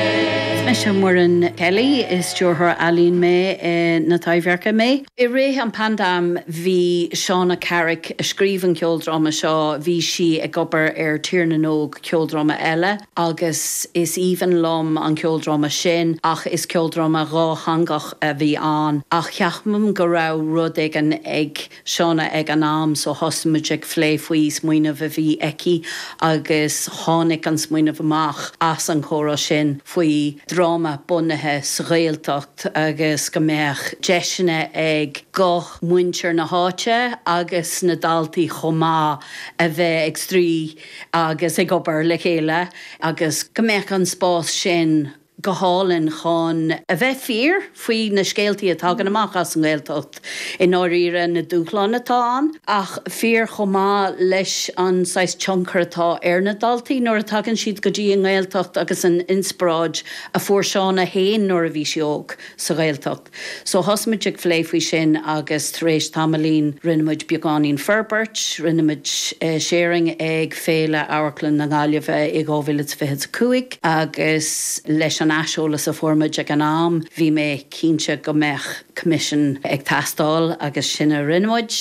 Is mise Muireann Kelly, is Stiúrthóir Ealaíon mé i na Taibhdhearc mé. I rith an pandemic bhí Shauna Carrick, a scríobh an ceoldráma seo, bhí sí ag obair ar Tír na nÓg, ceoldráma eile, agus is aoibhinn liom an ceoldráma sin ach is ceoldráma dhátheangach a bhí ann ach ceapaim go raibh rud éigin ag. Shauna ag an am so thosaigh muid ag phlé faoi smaoineamh a bhí aici agus tháinig an smaoineamh amach as an chomhrá sin faoi dhráma bunaithe sa Ghaeltacht agus go mbeadh deiseanna ag guth muintir na háite agus na daltaí chomh maith a bheith ag spraoi agus ag obair le chéile agus go mbeadh an spás sin go hálainn chun a bheith fíor faoi na scéaltaí a thagann amach as an nGaeltacht i ndáiríre, na dúshláin atá ann, ach fíor chomh maith leis an saghas tionchar atá ar na daltaí nuair a thagann siad go dtí an nGaeltacht agus an inspioráid a fuair Shauna féin nuair a bhí sí óg. sa Ghaeltacht. So thosaigh muid ag phlé faoi sin agus tar éis tamaillín rinne muid beagáinín forbairt, rinne muid sharing ag Féile Amharclainne na Gaillimhe i 2025 agus leis an aiseolas a fuair muid ag an am bhí mé cinnte go mbeadh coimisiún ag teastáil agus sin a rinne muid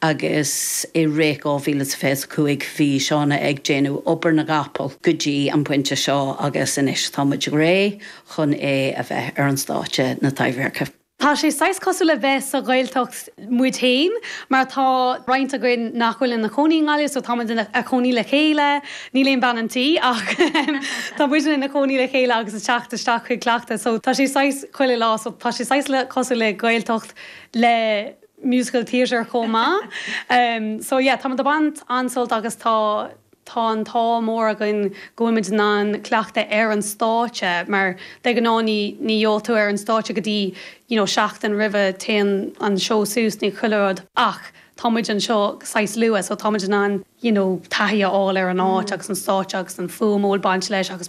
agus i rith 2025 bhí Shauna ag déanamh obair na gcapall go dtí an pointe seo agus anois tá muid réidh chun é a bheith ar stáitse na Taibhdheirce. Tá sé saghas cosúil le bheith sa Ghaeltacht muid féin mar tá roinnt againn nach bhfuil ina chónaí i nGaillimh so tá muid ina chónaí le chéile, níl aon bhean an tí ach tá muidne ina chónaí le chéile agus ag teacht isteach chuig cleachtadh so tá sé saghas chuile lá so tá sé saghas le cosúil le Gaeltacht le musical theatre chomh maith. So yeah tá muid ag baint an-sult agus tá Tá an t-ádh mór againn go bhfuilimid in ann cleachtadh ar an stáitse mar de ghnáth ní gheobhadh tú ar an stáitse go dtí you know seachtain roimhe, téann an seó suas, nó chuile rud ach tá muid anseo saghas luath so táimid in ann you know taithí a fháil ar an áit agus an stáitse agus an fuaim a bhfuil baint leis agus.